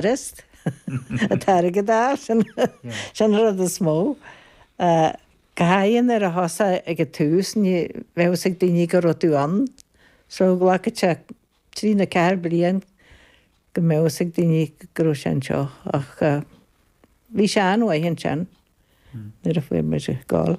Rest? An t-airgead, a fháil. Sin an rud is mó. Go háithrid nuair a thosaigh ag an tús, ní bheadh fhios ag daoine go raibh tú ann. So, ghlacfadh sé trí nó ceathair bliain go mbeadh fhios ag daoine go raibh sé anseo. Ach bhí sé an-mhaith ansin nuair a fuair muid ár gcáil.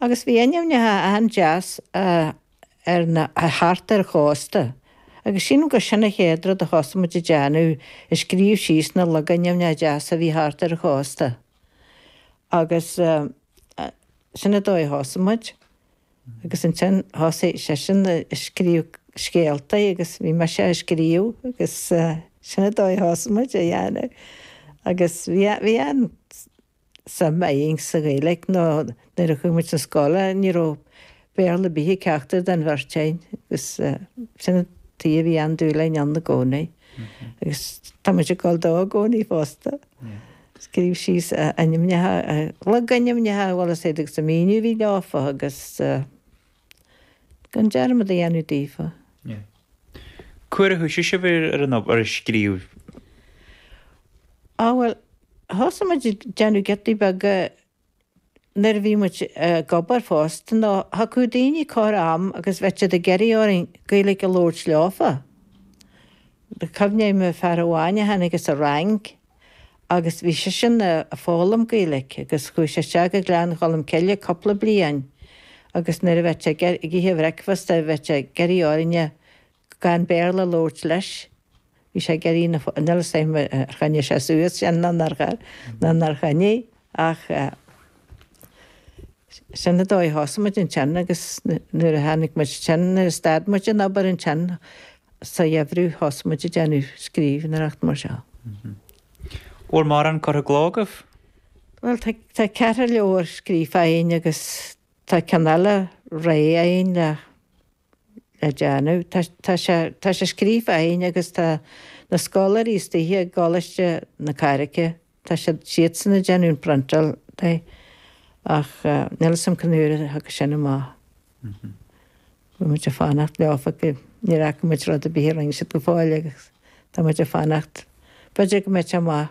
Agus bhí ainmneacha an-deas ar na, thart ar an chósta. Agus sílim gur sin an chéad rud a thosaigh muid ag déanamh, ag scríobh síos na logainmneacha deasa a bhí thart ar an chósta. Agus sin an dóigh a thosaigh muid. Agus ansin thosaigh seisean ag scríobh scéaltaí agus bhí mise á scríobh agus sin an dóigh a thosaigh muid á dhéanamh. Agus bhí an, bhí an. suim againn sa Ghaeilge nó nuair a chuaigh muid sa scoil ní raibh Béarla ar bith ag ceachtar den bheirt againn agus sin an t-ábhar a bhí an-dúil againn ann i gcónaí. Agus tá muid ag gabháil dó i gcónaí fosta. Scríobh síos ainmneacha, logainmneacha, cá bhfuil siad agus an míniú a bhí leofa agus. gan dearmad a dhéanamh daofa. Yeah. Cá huair a thoisigh sibh ar, ar an obair, ar scríobh? Á, bhuel, thosaigh muid ag déanamh giotaí beaga nuair a bhí muid ag obair fosta, nó thiocfadh daoine corr am agus bheadh siad ag iarraidh orainn Gaeilge a labhairt leofa. Cuimhním ar fear amháin a tháinig as an Fhrainc, agus bhí seisean a' foghlaim Gaeilic agus chuaigh sé isteach go Gleann Cholm Cille cúpla bliain agus nuair a bheadh sé ag ithe a bhreicfeasta bheadh sé ag iarraidh orainne gan Béarla a labhairt leis, bhí sé ag iarraidh na fo, níl 'fhios a'm ar choinnigh sé suas sin nó nár choinnigh. Ach sin an dóigh a thosaigh muid ansin agus nuair a tháinig muid ansin, nuair a stad muid an obair ansin sa gheimhreadh, thosaigh muid ag déanamh scríbhneoireacht mar seo. Bhfuil mórán curtha i gcló agaibh? Bhuel, tá ceithre leabhar scríofa againn agus tá ceann eile réidh againn le déanamh. Tá, tá sé, tá sé scríofa a'inn agus tá na scoláirí istigh i gColáiste na Carraice, tá siad, siadsan ag déanamh an priontáil de ach níl 'fhios a'm cén uair a thiocfaidh sin amach. Tá muid a' fanacht leofa go, níor fhaca muid rud ar bith a rinne siad go fóill agus tá muid a' fanacht, b'fhéidir go mbeidh sé amach.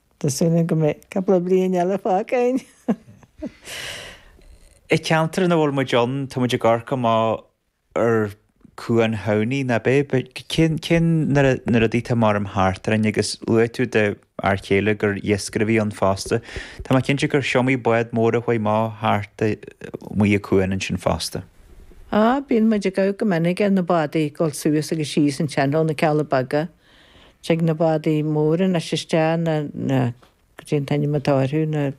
Tá súil agam go mbeidh cúpla bliain eile fágtha againn! An ceantar ina bhfuil muid ann, tá muid ag amharc amach ar Chuan Thamhnaigh, ná beidh? Cén, cén, na rudaí atá maram thart orainn agus luaigh tú do fhear chéile gur iascaire a bhí ann fosta. Tá mé cinnte gur iomaí bád mór a chuaigh amach thart amuigh a cuan ansin fosta. Á, bíonn muid ag amharc go minic ar na bádaí ag dul suas agus síos an teann ó na Cealla Beaga. Tig na bádaí móra anois isteach, na, na, goidé an t-ainm atá orthu, na,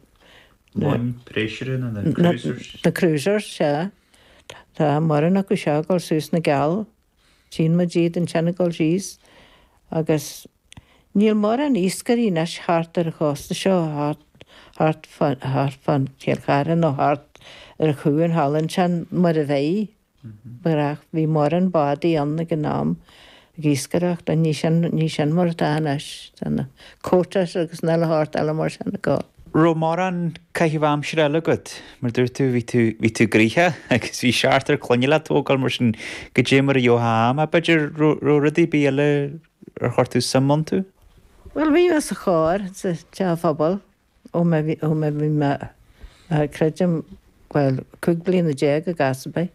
na, ó na, pleasure na, na, na, cruisers. na cruisers, sea. Tá mórán acu seo ag dul suas na gCeall. Tchíonn muid iad ansin ag dul síos agus níl mórán iascairí anois thart ar an chósta seo, thart, thart fán, thart fán Chill Chartha nó thart ar chuan Theilinn ansin, mar a bhíodh. Nuair a bhí mórán bádaí ann ag an am, ag iascaireacht, ach ní sin, ní sin mar atá anois, tá na quotas agus an uile shórt eile mar sin ag gabháil. Raibh mórán caitheamh aimsire eile agat? Mar dúirt tú, bhí tú, bhí tú gnoitheach agus bhí seachtar clainne le tógáil mar sin goidé mar a gheofá am, ach b'fhéidir raibh, raibh rudaí ar bith eile ar chuir tú suim iontu? Bhuel, bhí mé sa chór sa teach phobail ó mé, ó mé, bhí mé, creidim, bhuel, cúig bliana déag i gcás ar bith.